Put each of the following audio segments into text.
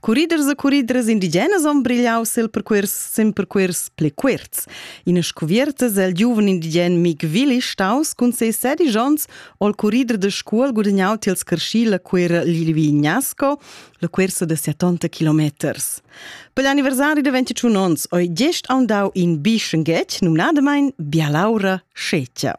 Curriders e curridras indigenas han brigliau sil percuors sin percuors pli cuorts. Ina scuviertas el giuven indigen Mick Willi staus cun ses sedisch onns ol currider de scuol gudagnau tiels carschi la cuera Lilvignasko, la cuorsa de 70 kilometers. Per l'anniversari de 21 onns oi gest aundau in bischenghetg numnadamein Bialaura Scetgia.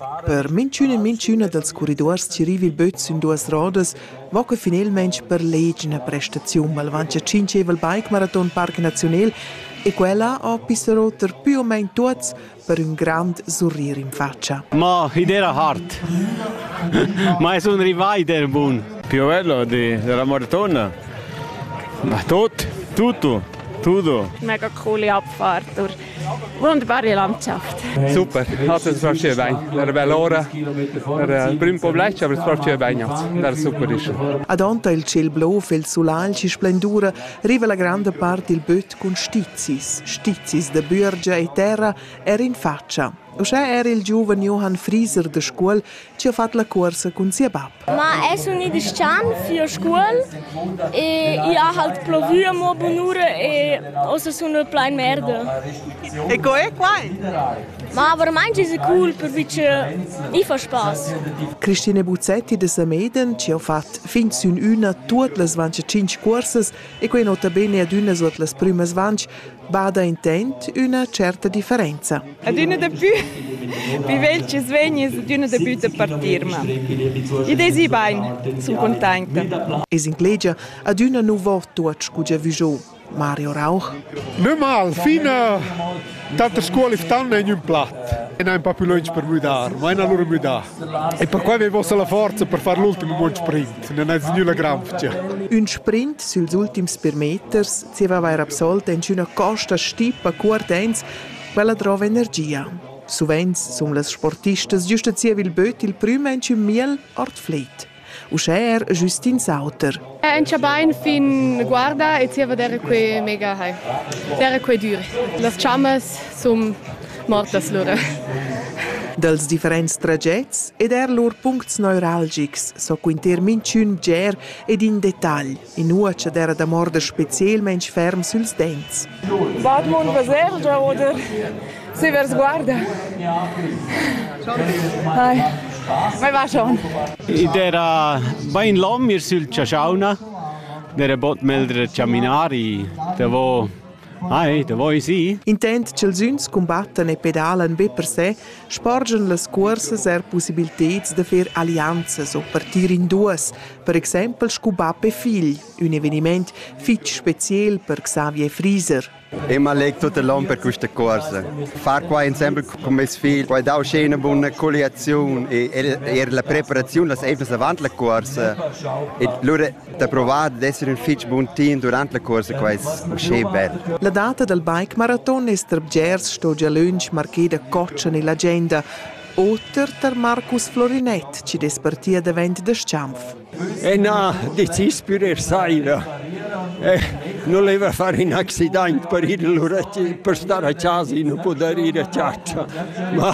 Per minchün e minchüna dals corriduors chi riva il böt sün duos rodas vo que finelmaing per leig üna prestaziun malvancia tschinchevel Bike-Maraton Parc Naziunel e quella ho pisso roter pü o main tuots per ün grand surrir in fatscha. Ma id era hard. Ma es un rivaj der bun. Più bello di, della maratona. Ma tot, tutto, tutto. Mega coole Abfahrt durch Wunderbar die Landschaft. Super, hat es war schön Wein. Era bella ora, era prüm poblec, aber es war schön Weihnachts. Era super ist. Adonta il ciel blof e il sulagl si splendura riva la grande parte il böt cun stizis, stizis de bürgia e terra er in faccia. Uschè era il giuven Johann Frieser de Scuol ci ha fatto la corsa con sia bab. Ma è sun i dischan fio scuol e i ha halt plovü a mo bunura e ossa sun plain merda. E co è quai? Ma verament è cool perché i fa spass. Cristine Buzzetti de Sameden ci ha fatto fin sün üna tuot las 25 cursas e quei nota bene ad üna sot las prümas 20 bada intent üna certa differenza. Adüna dapü vivel chi's vegnis adüna dapü da partir, ma id esi bain, sun containta. Es inclegia adüna nu vo tuot scu giavü giò. Mario Rauch. Nö mal, fina tante scuole stanno in un plat e non pa più lunch per müdar, ma in allora müdà. E perquai avevo la forza per far l'ultimo buon sprint, non ha nülla granfcia. Un sprint süls ultims per meters zieva vair absolt inchüna costa stipa cuort ans quella drova energia. Suvenz sun las sportistas giusta zievil böt il prüm inchün miel art fleit. Uschè er Justin Sauter. È anche bain fin guarda e zieva d'era que mega hai. D'era que dur. Las chammas sun mortas lura. Dels differents tragets ed er lur puncts neuralgics so quinter minchün bger ed in detagl inua ch'ed era da morder specielmain ferm süls dents. Bad mon basergia oder se vers guarda. Hai, vai va schon. Id era bain l'om ir sül chaschauna, n'era bod meldre chaminari, davo Ai, da voi sì. Intent ch'els üns cumbattan e pedalan be per se, sporgian las cuorsas er pussibilteds da fer allianzas o partir in duas, per exempel scu bap e figl, ün evenimaint fich speziel per Xavier Frieser. Ich me lege tut l'on per questa corsa. Far qua insieme con mes figli poi dare uscire una buona coliazione e er la preparazione las evnas avant la corsa. E lura da provare ad essere un fitch buon team durante la corsa qua è uscire bel. La data dal bike maraton es tra bgers sto gia lönch marcheda coccia nell'agenda. Oter tar Marcus Florinett chi dess partia davent da Schanf. E na, decis per er saira. Eh, non leva fare un accident per il per stare a casa e non poter ir a chatta. Ma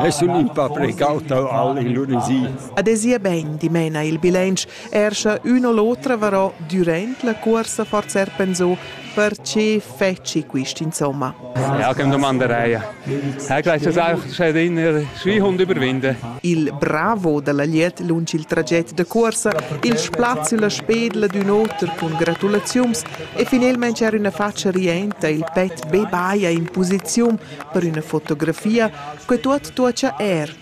es un un pa precaut al Ilurisì. Adesia ben dimena il bilancio Er sche ün o l'otra varò dürant la cuorsa forsa eir pensò per che fetschi quist insomma. Ja, kem domanderei. Hai gleich das auch sched in er Schwihund überwinden. Il bravo da la Liet lunch il traget da cuorsa, il spazi la spedla d'ün oter cun gratulaziums e finelmente er üna faccia rienta il pet bebaia in posiziun per üna fotografia che tuot tuocha er